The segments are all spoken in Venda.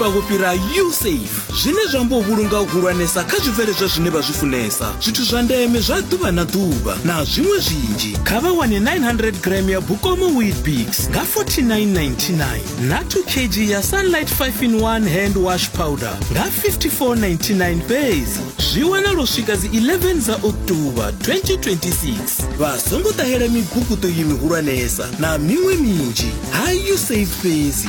vha vho fhira usafe zwine zwa amba u vhulunga u hulwanesa kha zwibveledzwa zwine vha zwi funesa zwithu zwa ndeme zwa ḓuvha na ḓuvha na zwiṅwe zwinzhi kha vha wane 900 gram ya bukomo weetbix nga 4999 na 2 kg ya sunlight 5 in 1 hand wash powder nga 5499 fhedzi zwi wana lwo swika dzi 11 dza oktoba 2026 vha songo ṱahela miguguṱo yi mihulwanesa na miṅwe minzhi ha usafe fhedzi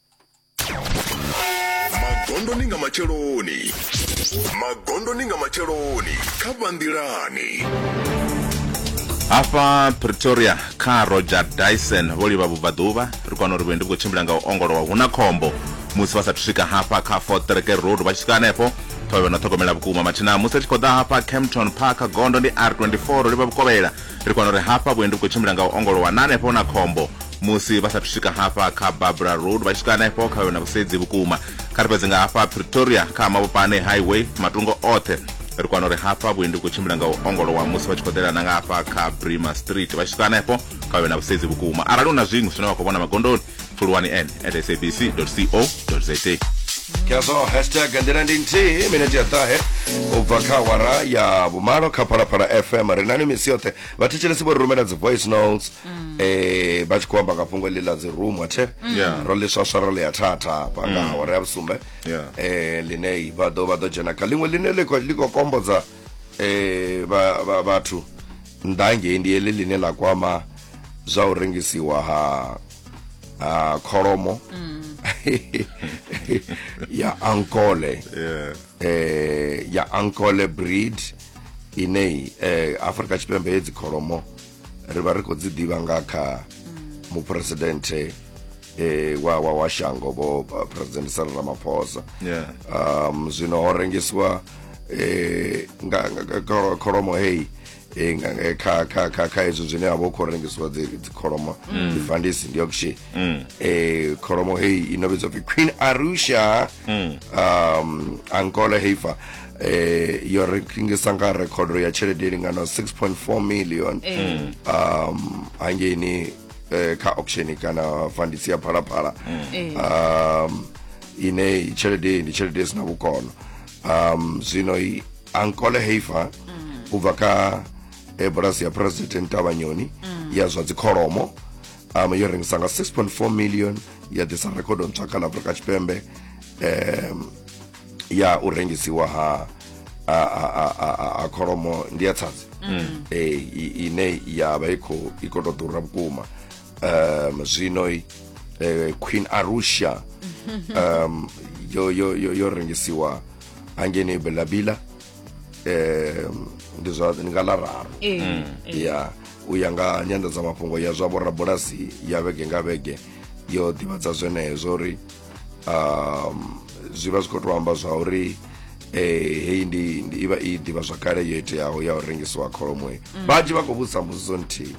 magondoni nga matsheloni magondoni nga matsheloni kha vhanḓilani hafha pretoria kha roger dyson vho livha vhubvaḓuvha ri kwana uri vhuendi vhu khou tshimbila nga u ongolowa hu na khombo musi vha sathu swika hafha kha fort treke road vha tshi swika hanefho ṱhovhe na ṱhogomela vhukuma mathina musi ri tshi khou ḓa hafha campton park gondo ndi r24 ro livha vhukovhela ri kwana uri hafha vhuendi vhu khou tshimbila nga u ongolowa na hanefho na khombo musi vha sathu swika hafha kha barbara road vha tshi swika hanefho kha yona vhusedzi vhukuma kha ri fhedze nga hafha pretoria kha mavhopane highway matungo oṱhe ri kwana uri hafha vhuendi vhu khou tshimbila nga u ongolowa musi vha tshi khou ḓelana nga hafha kha brima street vha tshi swika hanefho kha yona vhusedzi vhukuma arali hu na zwiṅwe zwine vha khou vhona magondoni pfuluwani n at sabc co za khazwo hashtag nḓila ndi nthihi minete ya ṱahe u bva kha awara ya vhumalo kha phalaphala fm ri nani misi yoṱhe vhathetshelesi vho ri rumela dzi voice notes mm. eh vha tshi khou amba nga fhungo ḽi ḽa dzi room athe mm. ro ḽiswaswa ro ḽi ya thatha hafha nga mm. awara ya vhusumbe eh ḽine vha ḓo vha ḓo dzhena kha ḽiṅwe ḽine ḽi khou kombodza eh vhathu nnḓa ngei ndi heḽi ḽine ḽa kwama zwa u rengisiwa ha ha kholomo ya ankole eh ya ankole breed ine eh Afrika Tshipembe hedzi kholomo ri vha ri khou dzi ḓivha nga kha muphuresidenthe eh, wa, wa, wa shango vho uh, president sara ramaphosa Yeah. um, zwino ho rengisiwa eh, nga, nga, nga kholo- kholomo heyi eh, nga- nga- kha kha kha kha ezwo zwine ha vha hu khou rengisiwa dzi dzi kholomo dzi fandisi ndi auction eh, kholomo heyi ino vhidzwa pfi queen arusha um, angola heifa eh yo rengisa nga rekhodo ya tshelede lingano 6.4 million eh. um hangeni eh, kha auction kana fandisi ya phalaphala eh. um ine tshelede ndi tshelede sina vhukono um zwino ankole heifa mm. u bva kha ebulasi ya president tavhanyoni mm. ya zwa dzikholomo um yo rengisa nga 6.4 million ya ḓisa rekhodo ntswa kha ḽa afrika tshipembe um ya u rengisiwa ha a, a, a, a, a kholomo ndi ya tsadzi mm. e, ine ya vha i khou i khou tou ḓura vhukuma um zwino e, queen arusha um yo yo yo, yo rengisiwa hangeni belabila um ndi zwa ndi nga ḽa raru e, mm. e. ya u ya nga nyanḓadzamafhungo ya zwa vhorabulasi ya vhege nga vhege yo ḓivhadza zwenezwo uri um, zwi vha zwi khou tou amba zwa uri eh heyi ndi ndi- ivha i ḓivha zwakale yo iteaho ya u rengisiwa kholomo he vhanzhi vha khou vhudzisa mbudziso nthihi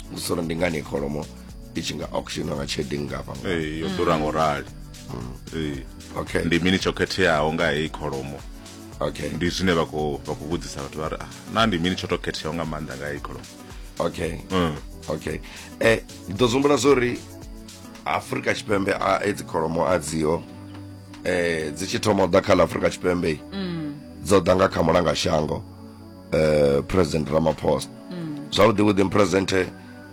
mbudziso uri ndi ngani iyi kholomo i tshi nga auctiona nga tshelede ngafha nga Eh, yo ḓura ngo rali Eh, okay ndi mini tsho khetheaho nga heyi kholomo okay ndi zwine vha khou vha khou vhudzisa vhathu vha ri ah, na ndi mini tsho to khetheaho nga maanḓa nga heyi kholomo okay Mm. okay eh ndi ḓo zumbula zwo ri afurika tshipembe a edzi kholomo a dziho eh dzi tshi thoma u ḓa kha ḽa afurika tshipembe mm. dzo ḓa nga kha mulanga shango eh president ramaphosa mm. zwavhuḓi vhuḓi president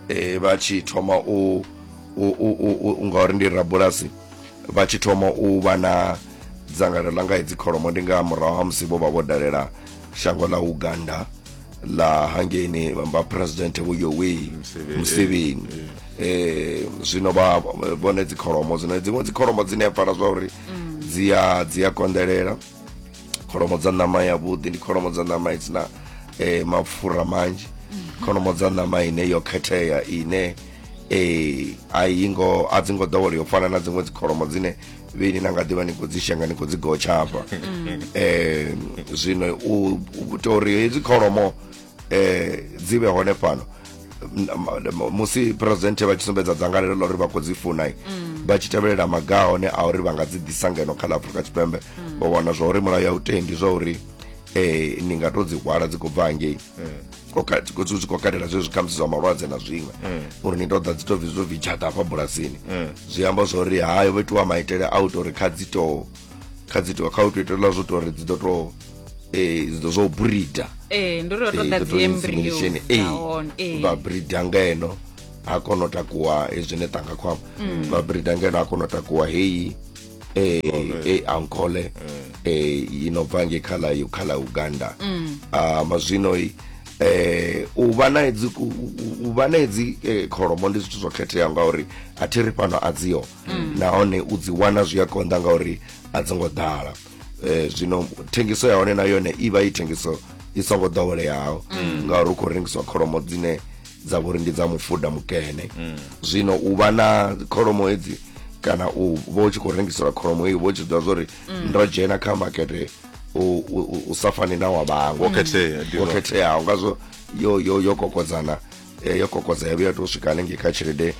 eh vha tshi thoma u ngauri ndi rabulasi vha tshi thoma u vha na dzangalelo ḽa nga hedzi kholomo ndi nga murahu ha musi vho vha vho dalela shango ḽa uganda la hangeni vha president vho yowei museveni eh zwino vha vhone dzikholomo dzine dziṅwe dzikholomo dzine pfala zwa uri mm. dzi a dzi a kondelela kholomo dza ṋama ya vhuḓi ndi kholomo dza ṋama i dzina eh mapfura manzhi mm. kholomo dza ṋama ine yo khethea ine eh a yingo a dzingo ḓowela yo fana na dziṅwe dzikholomo dzine vheni na nga ḓivha ni khou dzi shenga ni khou dzi gotsha hafha um zwino u tou uri hedzi kholomo um dzi vhe hone fhano musi presidente vha tshi sumbedza dzangalelo ḽa uri vha khou dzi funa mm. vha tshi tevhelela maga hone a uri vha nga dzi ḓisa ngeno kha ḽa afurika tshipembe mm. vha wana zwa uri mulayo ya u tendi zwa uri um ni nga tou dzi hwala dzi khou bva hangei dzi khou katela zwezwi khamusi zwa malwadze na zwiṅwe uri ni tou ḓa dzi tou bvi zwo bvitshata hafha bulasini zwi amba zwa uri hayo vho itiwa maitele a u tou uri kha dzi tou kha dzi tou kha u tou itelwa zwo tou uri dzi ḓo tou um zwo brida vha brida ngeno ha kona u takuwa hezwine ṱanga khwama vha brida ngeno ha kona u takuwa heyi eh, eh, ankole eh, ino bva nge kha ḽa yo- kha ḽa uganda Ah, mazwino i, eh, u vha na hedzi ku- u- u- u vha na hedzi eh, kholomo ndi zwithu zwo khetheaho ngauri a thi ri fhano a dziho nahone u dzi wana zwi a konḓa ngauri a dzi ngo ḓala Eh, zwino thengiso ya hone na yone i vha i thengiso i songo ḓoweleaho ngauri hu khou rengiswa kholomo dzine dza vhori ndi dza mufuda mukene mm. zwino u vha na kholomo hedzi kana u vha u tshi khou rengiselwa kholomo iyo vha u tshi ḓivha zwori mm. ndo dzhena kha makete u sa fani na wa vhaṅwe wo mm. khetheaho ngazwo yo yo yo kokodzana eh, yo kokodza yavho ya tou swika hanengei kha tshelede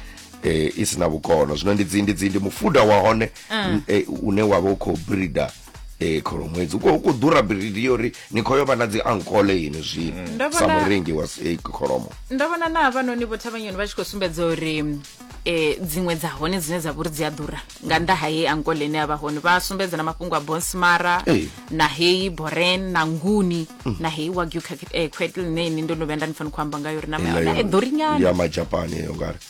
eh, i si na vhukono zwino ndi dzi ndi dzi ndi mufuda wa hone ah. eh, une wa vha u khou breeder mm. ee kholoṅwedzi uko ku ḓura biridi yo uri ni khou yo vha na dzi ankole ini zwino mm. Ndo sa vhona- murengi wa s- eh, kholomo ndo vhona na havhanoni vho thavhanyoni vha tshi khou sumbedza uri um dziṅwe dza hone dzine dza vhori dzi a ḓura nga nnḓa ha heyi ankole ine ya vha hone vha sumbedza na mafhungo a bonsmara Ee. na heyi boren na nguni na heyi wagyu quetl ine ini ndo no vhuya nda ni fani khou amba ngayo uri nama ya hone i ḓurinyana ya majapani eyo ngari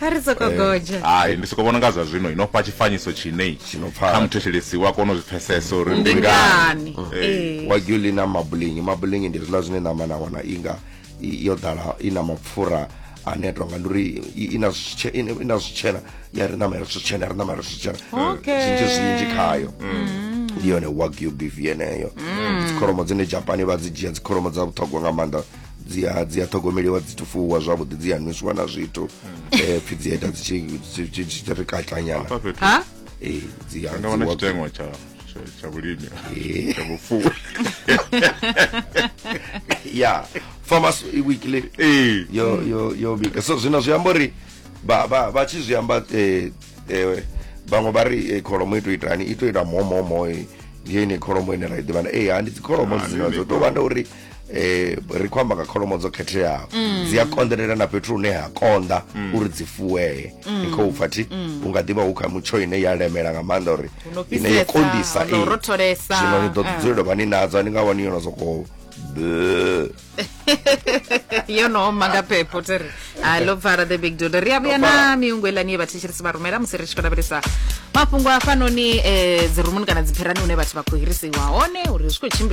ha ri soko eh, godzha hai ndi soko vhona nga zwa zwino ino fha tshifanyiso tshine kha muthetshelesi wa kona u zwi pfesesa uri ndi ngani eh. eh. wa gyuli na mabulingi mabulingi ndi zwiḽa zwine ṋama na wana inga yo ḓala i na mapfura ane tonga ndi uri i na zwitshena ya ri ṋama ya ri zwitshena ya ri ṋama ya ri zwitshena zwinzhi zwinzhi khayo mm. ndi yone wagyu beef yeneyo mm. dzikholomo dzine japani vha dzi dzhia dzikholomo dza vhuṱhogwa nga maanḓa dzi a dzi a ṱhogomeliwa dzi tufuwa zwavhuḓi dzi a nwisiwa na zwithu eh pfi dzi a ita dzi tshi dzi- dzi tshi ri katlanyana Hafha fhethu ha eh dzi a nga wana dzi wa- tshiteṅwa tsha tsha- tsha vhulimi Eh. tsha vhufuwi ya farmers weekly Eh. yo yo yo bika so zwino zwi amba uri vha vha vha tshi zwi amba eh eh vhaṅwe vha ri eh, kholomo i to itani i to ita momomo eh, ndi yene kholomo ine ra i ḓivha na eh ha ndi dzikholomo Ah, ndi dzino yone dzo to vha nda uri eh ri khou amba nga kholomo dzo khetheaho mm. dzi a konḓelela na fhethu hune ha konḓa mm. uri dzi fuwee mm. ni khou pfa thi u nga ḓivha hu kha mutsho ine ya lemela nga maanḓa uri ine ya konḓisa zwino ni ḓo ah. dzulela vha ni nadzo ni nga wani yono sokou yo no oma nga phepho ti ri ha lo pfala the big dude ri a vhuya na miungu elani ye vhathetshelisi vha rumela musi ri tshi khou lavhelesa mafhungo a fanoni um eh, dzirumuni kana dzipherani hune vhathu vha khou hirisiwa hone uri zwi khou tshimbila